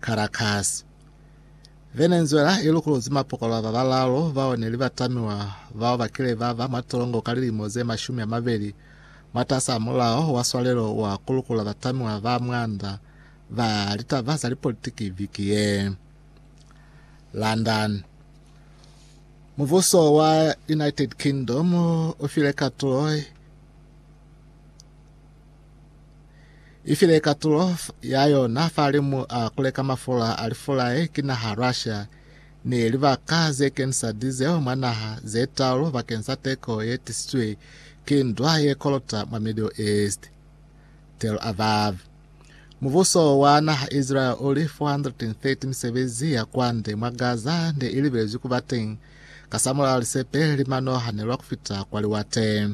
Caracas. Venezuela i lukuluzi mapokolwa ba balaalu bao ne li batamiwa bao ba kile ba ba mwa tolongo ka lilimo ze mashumi a mabeli mwatas'a mulao wa swalelo wa ku lukula batamiwa ba mwanda ba litaba za lipolitiki viki ye. London. Mubuso wa United Kingdom u file katulo ifile katulo ya yona fa limu a kuleka mafula a lifulae ki naha Russia ni libaka ze kenisa diesel mwa naha ze talu bakeng sa teko ye tisizwe ki ndwa ye kolota mwa Middle East. Tel Aviv. Mubuso wa naha Israel uli 430 misebezi ya kwande mwa Gaza ne ilibelezwi kuba teng kasamulaho lisepe limanoha nelwa kufita kwa liwate.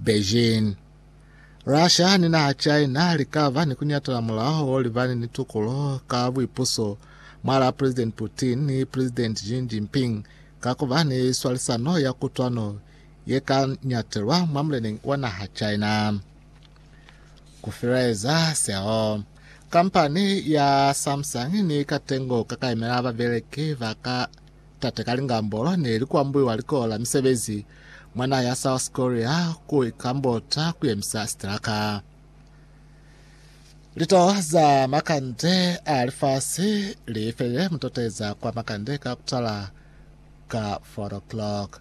Beijing. Russia ni naha China li ka ba ni ku nyatela mulaho o libani ni tukulo ka buipuso mwalaa President Putin ni President Xi Jinping ka ku ba ni swalisano ya kutwano ye ka nyatelwa mwa muleneñi wa naha China. Ku filaeza seo, kampani ya Samsung ni katengo ka ka yemela babeleki ba ka Tate ka lingambolo ne li kuambuiwa likolo la misebezi mwa naha ya South Korea ku ikambota kuyemisa sitilaka. Litoho za makande a lifasi li felile mutoteza kwa makande ka kutala ka 4 o'clock.